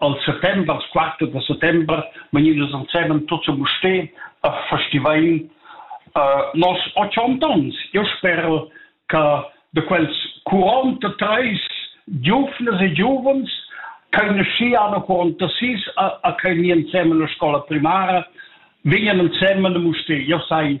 Al settember, als quatter da settember, vegnidas ensemen tots a Mustér a festivain uh, nos ochont ons. Eu sper che de quels 43 giuvnas e giuvens canosciano 46 a, a che mi insieme alla scola primaria vegnan insieme a Mustér. Eu sai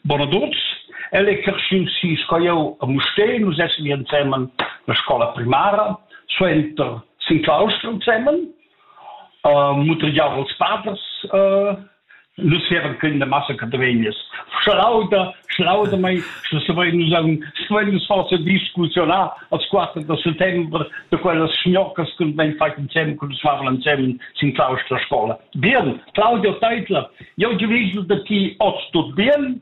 Bonaduns. El è creschì si sco jau a Mustér. Nus essim ensemen la scola primara, suenter sin claustra ensemen. Uh, mutregiau als paders. Uh, nus eran quindi massa catavegnas. Schlauda, schlauda mai, stuvein nus, stuvein nus forse discusionar als quattro da settembre da quellas schnoccas che ben fai insieme con nus favel insieme sin claustra scola. Bien, Claudio Teitler, Eu giavüsch da chi hoz tut bien,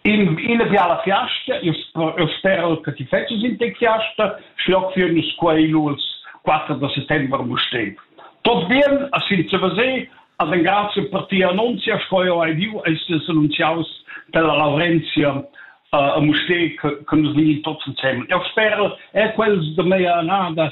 in ina fiala fiasta, eu spero che ti fetschas in te fiasta, schloc für nicht queiluls 4 de settembre mustév. Tot bien, a sin se vase, ad en grazie per ti annunzia, sco eu hai diu, estes annunziaus della Laurenzia uh, a Musté, che nos vini tots insieme. Eu spero, è quels de mea annada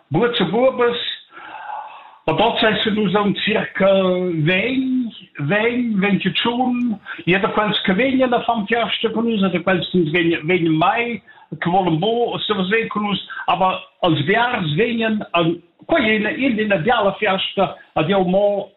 Buots e buobas, adonta essan nus aunc circa vegn, vegn, ventgatschun, ia da quels che vegnan a far fiasta con nus, da quels che nus vegnan, vegnan mai, che volen bo surseir con nus, aber als biars vegnan, quei è ina, ina diala fiasta, ad jau mo